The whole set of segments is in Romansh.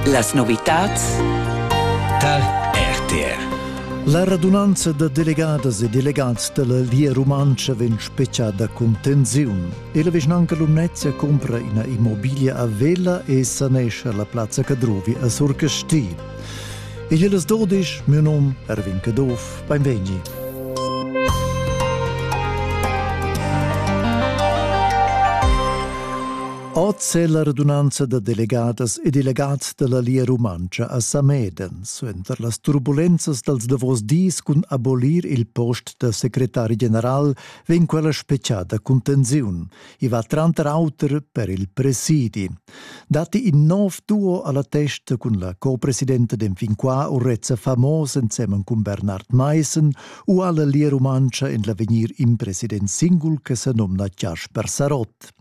Las novitads tar RTR. La radunanza da delegadas e delegats da la Lia Rumantscha vegn speciada cun tensiun e la vischnanca Lumnezia cumpra ina immobiglia a Vella e sanescha la plazza Cadrovi a Surcasti. Igl è las dodisch, mio num Erwin Caduff, beinvegni. Oz è la radunanza da delegadas e delegads da la Lia Rumantscha a Sameden suenter las turbulenzas dals davos dis cun abolir il post da secretari general vegn quella speciada cun tensiun. I va tranter auter per il presidi. Datti in nov duo a la testa cun la co-presidenta den fin qua Urrezza Famos ensemen cun Bernard Meissen u alla Lia Rumantscha en l'avegnir in president singul che sa nomna Jasper Sarott.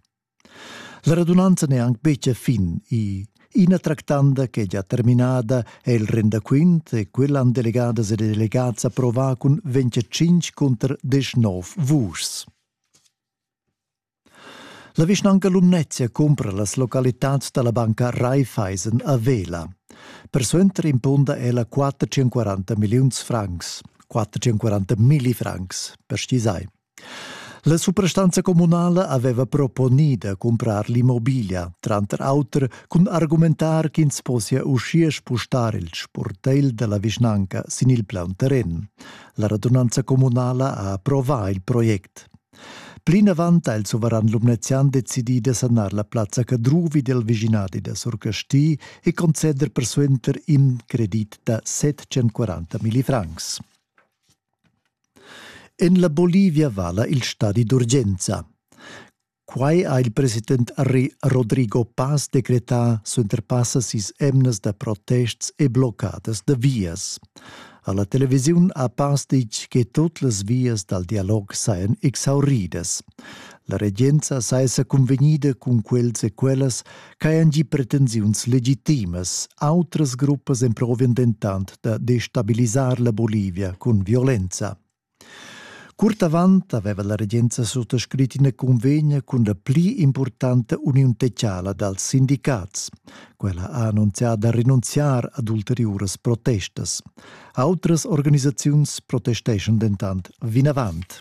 La radunanza n'è anc betg a fin. I Ina tractanda ch'è già terminada è il rendaquint e quella han delegadas e delegats approvà cun 25 cunter 19 vuschs. La vischnanca Lumnezia cumpra las localitads da la banca Raiffeisen a Vela. Persuenter impunda ella 440 milliuns francs, 440 milli francs per stisai. La suprastanza communala aveva proponì da cumprar l'immobiglia, tranter auter cun argumentar ch'ins possia uschia spustar il sportegl da la vischnanca sin il plaun terren. La radunanza communala ha approvà il project. Plinavant ha il suveran lumnezian decidì da sanar la plazza Cadruvi del viginadi da Surcasti e conceder persuenter in credit da 740 milli francs. En la Bolivia vala il stadi d'urgenza. Quai ha il president Rodrigo Paz decretà suenter passa sis emnas da protests e bloccadas da vias. Alla televisiun ha Paz ditg che tut las vias dal dialog sajan exauridas. La regenza saja sa cunvegnida cun quels e quellas ch'hajan gì pretensiuns legitimas. Autras gruppas emprovian dentant da destabilisar la Bolivia cun violenza. Curt avant aveva la regenza suttascrit ina convegna cun la pli importanta uniun techala dals sindicats. Quella ha annunzià da rinunziar ad ulteriuras protestas. Autras organisaziuns protesteschan dentant vinavant.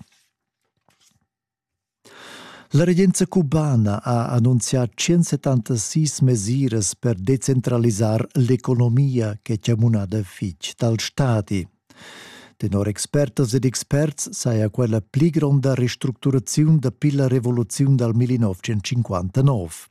La regenza cubana ha annunzià 176 mesiras per decentralisar l'economia che ha munada fitg dal stadi. Tenor expertas ed experts saja quella pli gronda restructuraziun dapi la revoluziun dal 1959.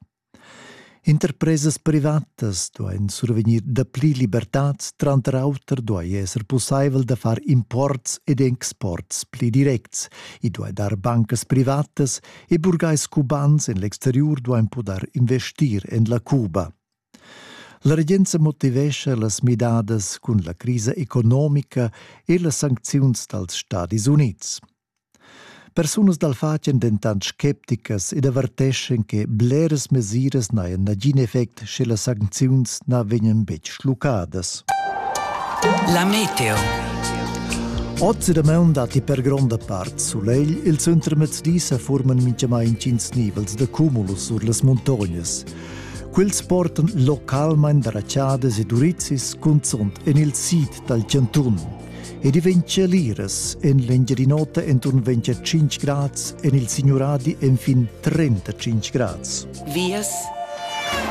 Interpresas privatas duain survegnir dapli libertads, tranter auter duai esser pussaivel da far imports ed exports pli directs. I duai dar bancas privatas e burgais cubans en l'exteriur duain pudair investir en la Cuba. La regenza motivescha las midadas cun la crisa economica e las sancziuns dals Stadis Unids. Persunas dal fatg èn dentant scepticas ed averteschan che bleras mesiras n'hajan nagin effect sche las sancziuns na vegnan betg schluccadas. La meteo. Oz da maun datti per gronda part sulegl. Il suntermezdi sa forman mintgamai intgins nivels da cumulus sur las muntognas. Quels portan localmain darachadas e durizis cunzunt en il sid dal chantun. ed i vegn cheliras en l'Engiadin'Ota enturn 25 grads, en il Signuradi enfin 35 grads. Vias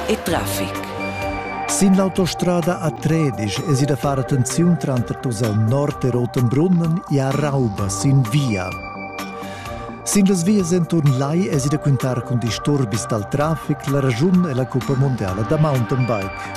e traffic. Sin l'autostrada a Tredisch es i da far attenziun tranter tus al nord e Rotenbrunnen e a Rauba sin via. Sin las vias enturn lai es i da quintar cun disturbis dal traffic la ragiun e la cuppa mondiala da mountainbike.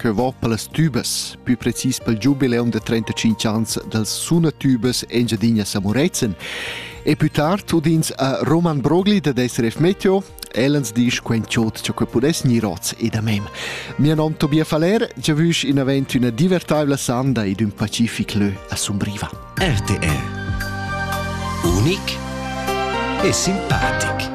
Cheu va per las tubas, pü precis pel giubileum da 35 ans dals sunatubas Engiadina Samurezen. E pü tard udins a Roman Brogli da SRF Meteo, Ellens disch quen chot cha que pudess gnir hoz e da mem. Mia nom Tobia Faller giavüsch in avent üna divertaivla sanda ed ün pacific lö a Sumbriva. RTR Unic e simpatic.